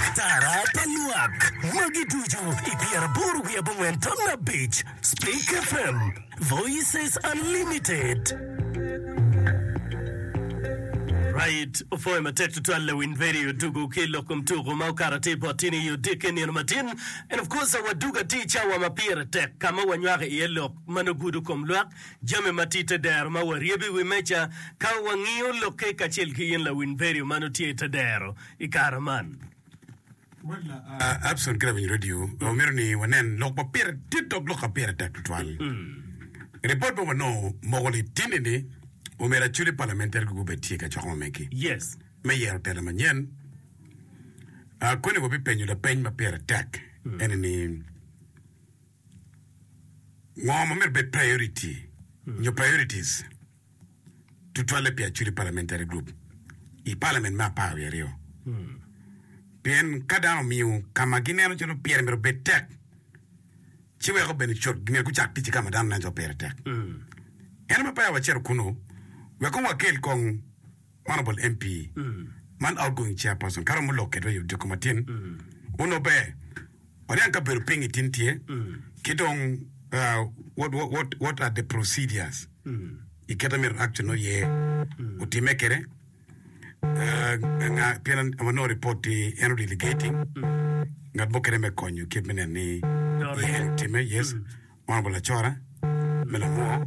Atara pa lwak magi ducu i pyeraboro wiye abongwen taman abic, Speak FM, Voices Unlimited. Right opwoyo matek tutwal lawiny Perry Odugo ki lok kom tuko ma okato atir bot tin i odiki nino matin. And of course Waduga tye i cawa ma pire tek ka ma wanywako iye lok ma nongo gudo kom lwak, jami ma tye i te dero ma waryebo i wi meja ka wangiyo lokke kacel ki in lawiny Perry ma nongo tye i te dero. i kare man. Abson ki lawiny redio wamito ni wanen lok ma pire dit dok lok ma pire tek tutwal. Ripot ma wanongo moko litini ni omera aculi palamentari gi gubed tye ka coko mamegi Yes. me yero telo manyen. Ah, Koni wabipenyo lapeny ma pire tek ene ni ngo ma myero bed priority nyo priorities? tutwalle pi Acholi Parliamentary Group i Parliament me apar wiye aryo. Pien ka dano omiyo ka ma gineno calo pire myero obed tek, ci weko bene cut myero gucak tic ki ka ma dano neno calo pire tek. Ento me peya wacito kunnu, wek kong wakel kong Honourable MP man Outgoing Chairperson Kara Mulok Kedwa i Odiko Matin onongo ber waniang ka bedo ping itin tye ki dong what what what are the procedures i kit amito action oye otime kede nga pien anongo report ti en o delegating ngat mo kede me konyo kit me neno ni ye en otime yes Honourable Acora me Lamor